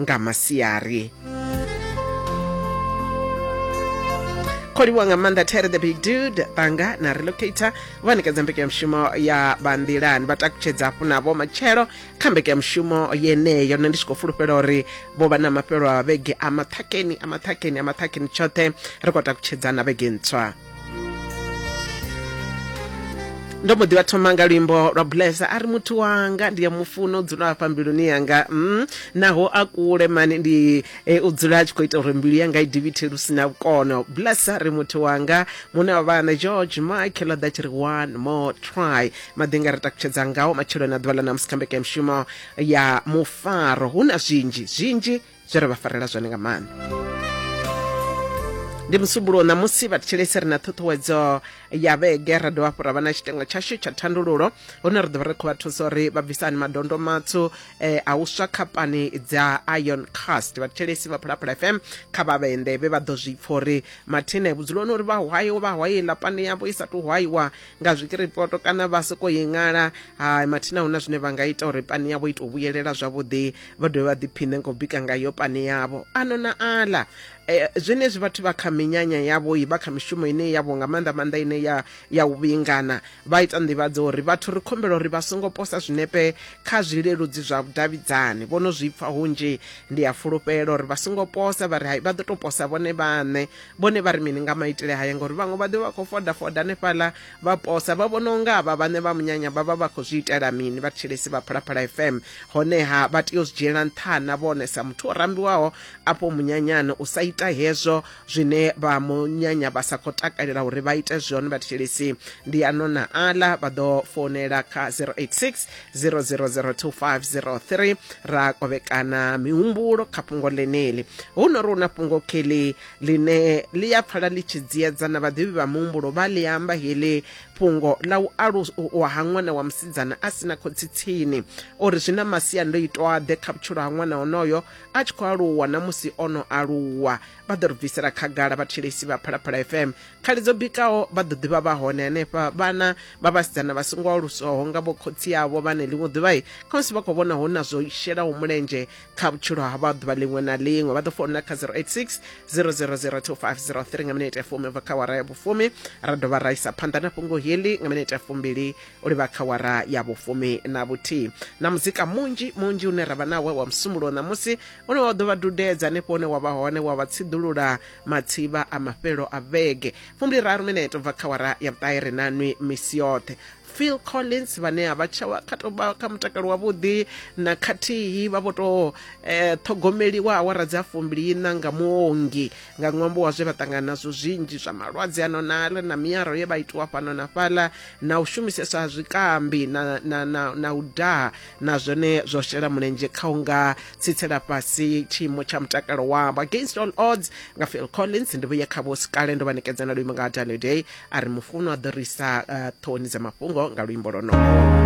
nga masiari kho livhuwa nga maanḓa tere the big dude banga na relocator vha ṋekedza mbekanyamushumo ya vhanḓilani vha takutshedza hafhu navho matshelo kha mbekanyamushumo yeneyo nṋe ndi tshi khou fulufhela uri vho vha na mafhelo a vhege a maṱhakeni a maṱhakeni a maṱhakeni tshoṱhe ri khou takutshedzana vhege ntswa ndo mbo ḓi vha thoma nga luimbo lwa bulesa a ri muthu wanga ndi ya mufuno dzula hafha mbiluni yanga mm, naho a kule mani ndi e, u dzula a tshi khou ita uri mbilu yanga i divithe lu si na vhukono bulesa ri muthu wanga muṋe wa vhana george mike ḽa ḓa tshi ri one more try maḓi nga ri takutshedza ngawo matshelo na ḓuvha ḽa namusi kha mbekanyamushumo ya mufaro hu na zwinzhi zwinzhi zwi ri vha farela zwone nga maanḓa ndi musumbulo ṋamusi vhathetshelesi ri na ṱhuṱhuwedzo ya vhege ra dovha hafhu ra vha na tshitengo tshashu tsha thandululo hune ri ḓo vha ri khou vha thusa uri vha bvisani madondo matswu eh, a u swa khapani dza ion cast vhathetshelesi vha phulaphula fm kha vha vhende vhe vha ḓo zwi pfa uri mathine vhudzuloni uri vha hwayo vha hwaye ḽa pani yavho i sa tou hwayiwa nga zwikiripoto kana vha sokou i ṅala ha mathina hu na zwine vha nga ita uri pani yavho i tou vhuyelela zwavhuḓi vha dovhe vha ḓiphiṋe ngo bika ngayo pane yavho ano na aḽa eh, zwenezwi vhathu vha kha minyanya yavho i vha kha mishumo ine yavho nga maanḓa maanḓa ine ya ya u vhingana vha ita nḓivhadzo uri vhathu ri khombela uri vha songo posa zwinepe kha zwileludzi zwa vhudavhidzani vho no zwi pfa hunzhi ndi a fulufhela uri vha songo posa vha ri hai vha ḓo tou posa vhone vhaṋe vhone vha ri mini nga maitele haya ngauri vhaṅwe vha ḓo vha khou foda foda hanefhaḽa Vhaposa vha vhona unga avha vhane vha munyanya vha vha vha khou zwi itela mini vhathetshelesi vha Phalaphala FM honeha vha tea u zwi dzhiela nṱha na vhone sa muthu o rambiwaho afho munyanyani u sa ita hezwo zwine vha munyanya vha sa khou takalela uri vha ite zwone vhathetshelesi ndi ano na aḽa vha ḓo founela kha 086 0002503 ra kovhekana mihumbulo kha fhungo ḽeneli hu no ri hu na fhungo kheḽi ḽine ḽi ya pfala ḽi tshi dziedza na vhaḓivhi vha muhumbulo vha ḽi amba heḽi fhungo ḽa u aluswa ha ṅwana wa musidzana a si na khotsi tsini o ri zwi na masiandoitwaḓe kha vhutshilo ha ṅwana onoyo a tshi khou aluwa na musi o no aluwa vha ḓo ri bvisela khagala vhathetshelesi vha phalaphala fm khali dzo bikaho vha ḓo ḓivha vha hone henefha vhana vha vhasidzana vha songo aluswaho nga vho khotsi avho vhane ḽiṅwe ḓuvha khamusi vha khou vhona hu na zwo shelaho mulenzhe kha vhutshilo ha vha ḓuvha ḽiṅwe na ḽiṅwe vha ḓo founa kha 086 000250 nga minete ya fumi bva kha wara ya vhufumi ra dovha ra isa phanḓa na fhungo heḽi nga minete ya fumbili u livha kha wara ya vhufumi na vhuthihi na muzika munzhi munzhi une ra vha nawe wa musumulo ṋamusi une wa ḓo vha dudedza hanefho hune wa vha hone wa vha tsiḓulula matsivha a mafhelo a vhege fumbili raru minete bva kha wara ya vhuṱahe ri na nwi misi yoṱhe phil collins vhane a vha tsha kha tou vha kha mutakalo wavhuḓi na khathihi vha vho tou um eh, ṱhogomeliwa awara dzi a fumbiliina nga muongi nga ṅwambo wa zwe vha ṱangana nazwo zwinzhi zwa malwadze ano nala na miaro ye vha itiwa fhano na fhaḽa na u shumisesa ha zwikambi na, na, na, na u daha na zwone zwo shela mulenzhe kha u nga tsitsela fhasi tshiimo tsha mutakalo wavho against all odds nga phil collins ndi vhuye kha vho sikale ndo vha ṋekedza na luimo nga ha daniel day a ri mufunwa a ḓo ri isa uh, ṱhohoni dza mafhungo nga luimbo lwonoho